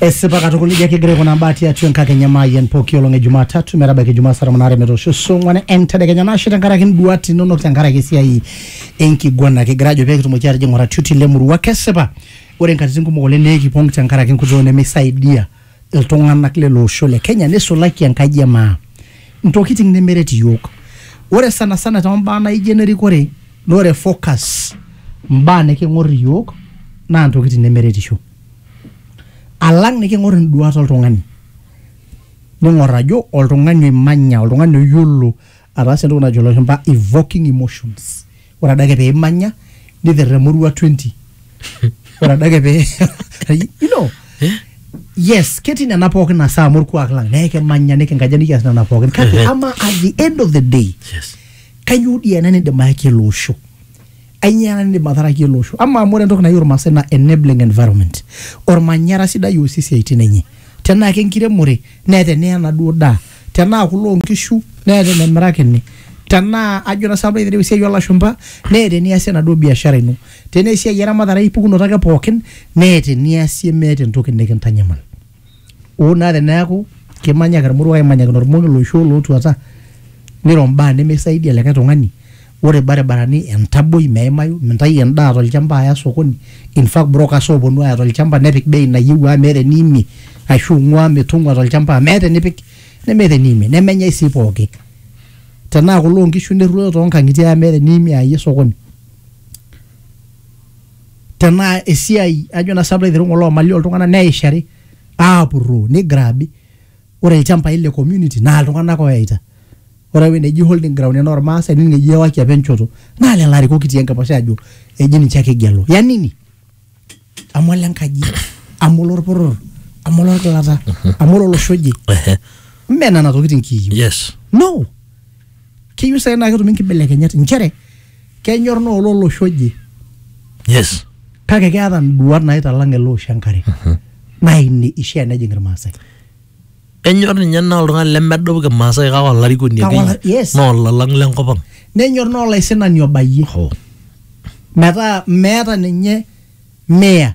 Esipa katukul ijo ake egira aikunaa mbaa tiatua enkakenya maayian pooki olong e Jumatatu metabaiki Ijumaa saa tomon aare metoosho oso ong'uan entedekenya nashe tenkaraki induat inonok tenkaraki esiai enkiguana kigira ajo pee kitumoki aatijing oratioti lemurua kesipa ore inkatitin kumok oleng naa ekipong tenkaraki enkutuk nemeisaidia iltung'anak lele osho le Kenya neisulaki enkaji e maa intokitin nemeret iyiook ore sana sana tombaa naijo enerikore naa ore focus imbaa niking'or iyiook naa intokitin nemeretisho. alang niking'or induat oltung'ani ning'or ajo oltung'ani oimanya oltung'ani oyiolo ataasa entoki najo ilashumpa evoking emotions ore adake peimanya niterremo orua 20 ore adake pee you know yes ketii nena pookin nasaa amu orkuak lang nekimanya nikinkaja nikias nena pookin kake ama at the end of the day yes. kainyoo dii ena nindim ayaki ele osho Ainyoo ena nidim ataraki ele osho? Amaa amu ore entoki nayieu Irmaasai naa enabling environment. Ormanyara sidai oosie isiaitin enye. Tenaa kenkiremore neeta eneya enaduo daa. Tenaa kuloo nkishu neeta enemirakini. Tenaa ajo naa sinanu piitireu esiai oolashumpa neeta eniasie enaduo biashara ino. Tenaa esiai eramatare ai pukunoto ake pookin neeta eniasie meeta entoki nikintanyamal Hoo naa teneaku kimanyaki olmoruo aimanyakino olmoruo oloishu olootuata niro imbaa nemeisaidia likae tung'ani, ore ilbaribarani entaboi meimayu, mintayu endaa tolchamba aya sokoni, in fact brokers ooponu aaya tolchamba nepik bei nayieu amu meeta eniimie ashu ing'ua mitung'ua tolchamba amu meeta enipik nemeeta eniimie nemenyai sii pooki. Tenaa kule oo nkishu nirruoyo too nkang'itie amu meeta eniimie ayayie sokoni. tenaa esiai ajo na sinanu aiteru ngole omali oltung'anak neishari apuroo nigrabi ore ilchambai le community naa iltung'anak oyaita ore ewueji neji holding ground enaa ormaasai nining eji ewaki apa enchoto naa lelo arikok kitii enkiposha ajo eji ninche ake igelu ya nini amu ole nkaji amu olorporor amu olorgilata amu ololosho oje ime nena tokitin kiyieu yes no keyieu sai naa ketumi nkibelekenyat nchere kenyor naa olo olosho oje yes kake keeta nduat naitalang ele osho enkare naa ine ishia nejing irmaasai enyor ninye naa oltung'ani lemedup kimaasai kake olarikoni Kake ola- akeyie yes. naa olalang lenkop ang nenyor naa olaisinani obayie Ho. metaa meeta ninye mea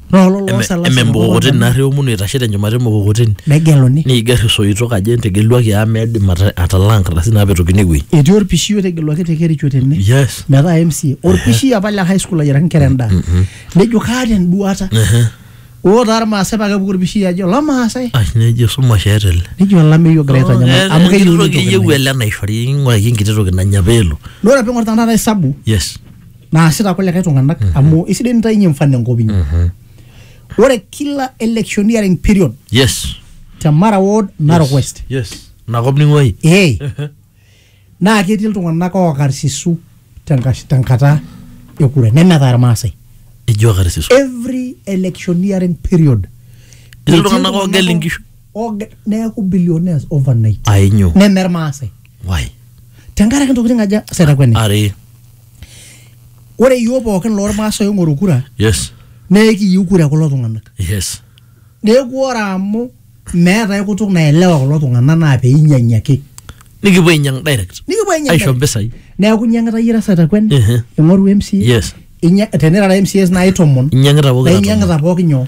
naa ololo Eme- osalasa eme mukokoteni naarri omunu eitashe tenchumata emukokoteni negeluni neiger isoitok ajo entegeluaki amu meidim ata- atalaa nkardasini naapetokini ewueji etii orpishi otegeluaki te kericho tene yes metaa mca orpishi apa le high school ayiaraki nkera endaa nejo kaata enduata oo taa irmaasai paa kepuku orpishi ajo lamaasai ai nejo esumash eeta ele nejo olameyu ogira aitanyamal amu keyieu keyieu ele naishori ing'uraki enkiti toki nanya peelo naa ore piing'or tenakata hesabu yes naasita kulikae tung'anak amu isidai nitainyie mfano enkop inyi ore kila electioneering period yes te mara ward narok west yes nakop ning'uai ee naa ketii iltung'anak ookarsisu tenkash- tenkata e kura nemetaa irmaasai ijo karisiso every electioneering period Etii iltung'anak oogel inkishu. oge- neeku billionaires overnight ainyo neme irmaasai wai tenkaraki ntokitin aja setakueni are ore iyiook pookin loormaasai oing'oru kura yes naa ekiyieu kura kulo tung'anak yes neeku ore amu meetae kutuk naelewa kulo tung'anak naa peinyiang'i ake nikipuo ainyang direct nikipuo ainyang aisho direct. mpisai neeku inyiang'ita iyie irasa takwen Mhm. ing'oru MCA Yes. inya- tenirara MCAs naai tomon inyang'ita pokira naa tomon. inyiang'ita pooki nyoo